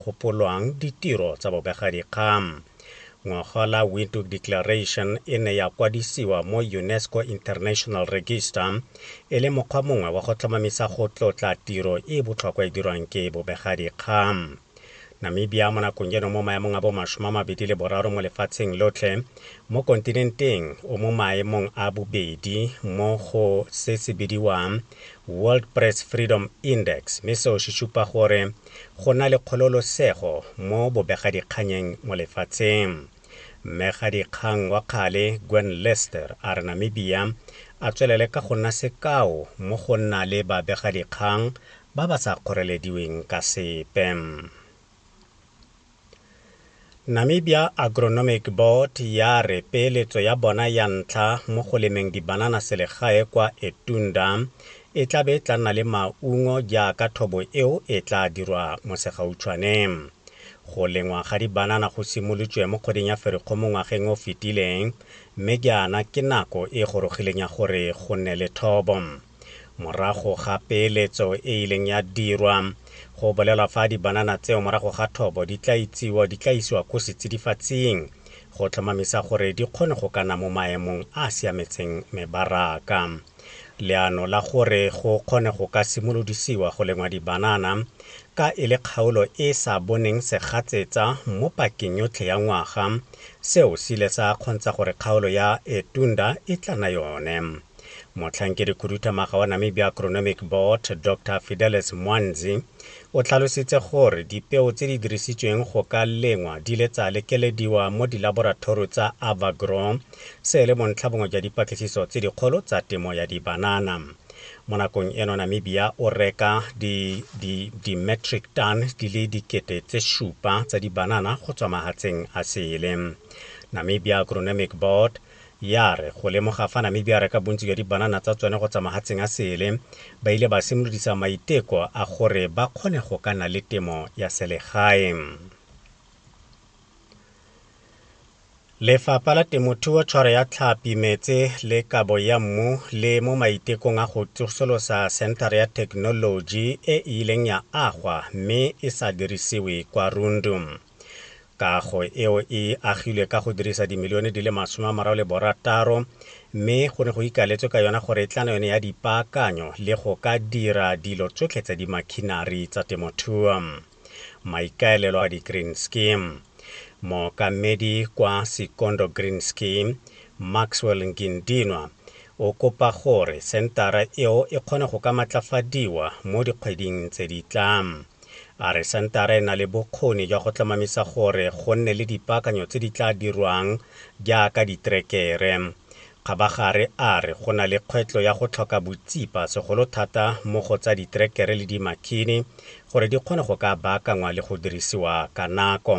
gopolwang ditiro tsa bobegadikgang. Ngwaga la Windhoek Declaration e ne ya kwadisiwa mo UNESCO International Register e le mokgwa mongwe wa go tlhomamisa go tlotla tiro e e botlhokwa e dirwang ke bobegadikgang. Namibia mo nakong eno mo maemong a bo masome a mabedi le boraro mo lefatsheng lotlhe mo kontinenteng o mo maemong a bobedi mo go se se bidiwang World Press Freedom Index mme seo se supa gore go na le kgololosego mo bobegadikganyeng mo lefatsheng. Mmegadikgang wa kgale Gwen Lyster a re Namibia a tswelele ka go nna sekao mo go nna le babegadikgang ba ba sa kgorelediweng ka sepe. Namibia Agronomic Board ya re peeletso ya bona ya ntlha mo go lemeng dibanana selegae kwa Etunda e tla be tla nna le maungo jaaka thobo eo e tla dirwa mo segautshwane. Go lengwa ga dibanana go simolotswe mo kgweding ya Ferikgo mo ngwageng o fetileng, mme jaana ke nako e gorogileng ya gore go nne le thobo. Morago ga peeletso e ileng ya dirwa, go bolelwa fa dibanana tseo morago ga thobo di tla itsiwa di tla isiwa ko setsidifatsing go tlhomamisa gore di kgone go kana mo maemong a a siametseng mebaraka. Leano la gore go kgone go ka simolodisiwa go lengwa dibanana ka e le kgaolo e e sa boneng segatsetsa mo pakeng yotlhe ya ngwaga, seo se ile sa kgontsha gore kgaolo ya Etunda e tlana yone. Motlhankedikhuduthamaga wa Namibia Agronomic Board, Doctor Fidelis Mwanzi, o tlhalositse gore dipeo tse di dirisitsweng go ka lengwa di le tsa lekelediwa mo dilaborathoro tsa Avagrow, se e le bontlhabongwe jwa dipatlisiso tse dikgolo tsa temo ya dibanana. Mo nakong eno Namibia o reka di, di, di metric ton di le dikete tse supa tsa dibanana go tswa mahatseng a sele. Namibia Agronomic Board Ya re go lemoga fa Namibia a reka bontsi jwa dibanana tsa tsone go tswa mahatsheng a sele, ba ile ba simolodisa maiteko a gore ba kgone go ka nna le temo ya selegae. Lefapha la Temothuo, Tshwaro ya Tlhapi, Metse le Kabo ya Mmu le mo maitekong a go tsosolosa senthara ya thekenoloji e e ileng ya agwa mme e sa dirisiwe kwa Rundu. Kago eo e agilwe ka go dirisa dimilione di le masome a mararo le borataro mme go ne go ikaletswe ka yona gore e tlana yone ya dipaakanyo le go ka dira dilo tsotlhe tsa dimakhinari tsa temothuo. Maikaelelo a di-green scheme. Mookamedi kwa Sikondo Green Scheme, Maxwell Ngindinwa, o kopa gore sentara eo e kgone go ka matlafadiwa mo dikgweding tse di tlang. A re Centara e na le bokgoni jwa go tlhomamisa gore go nne le dipaakanyo tse di tla dirwang jaaka diterekere. Kgabagare a re go na le kgwetlo ya go tlhoka botsipa segolo thata mo go tsa diterekere le dimakhini gore di kgone go ka baakangwa le go dirisiwa ka nako.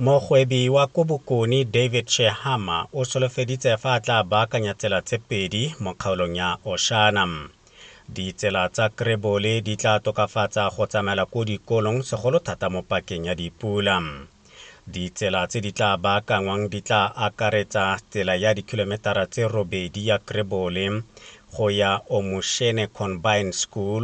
Mogwebi wa ko Bokone David Shehama o solofeditse fa a tla baakanya tsela tse pedi mo kgaolong ya Oshana. Ditsela tsa Krebole di tla tokafatsa go tsamaela ko dikolong segolo thata mo pakeng ya dipula. Ditsela tse di tla baakanngwang di tla akaretsa tsela ya dikhilometara tse robedi ya Krebole go ya Omushene Combined School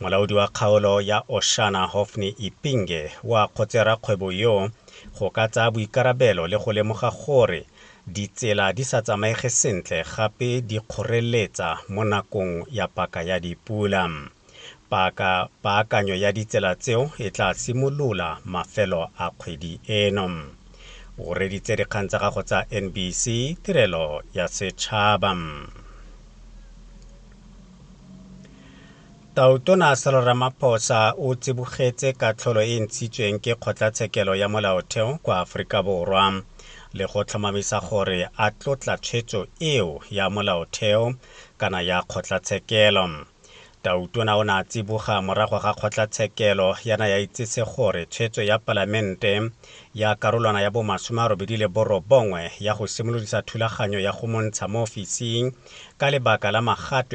Molaodi wa kgaolo ya Oshana Hophne Ipinge o a kgotse rakgwebo yo go ka tsaya boikarabelo le go lemoga gore ditsela di sa tsamaege sentle gape di kgoreletsa mo nakong ya paka ya dipula. Paka paakanyo ya ditsela tseo e tla simolola mafelo a kgwedi eno. O reditse dikgang tsa gago tsa NBC Tirelo ya Setšhaba. Tautona Cyril Ramaphosa o tsibogetse katlholo e e ntshitsweng ke Kgotlatshekelo ya Molaotheo kwa Aforika Borwa le go tlhomamisa gore a tlotla tshwetso eo ya Molaotheo kana ya Kgotlatshekelo. Tautona o ne a tsiboga morago ga Kgotlatshekelo ya na ya itsise gore tshwetso ya Palamente ya karolwana ya bomasome a robedi le borobongwe ya go simolodisa thulaganyo ya go montsha mo ofising ka lebaka la magato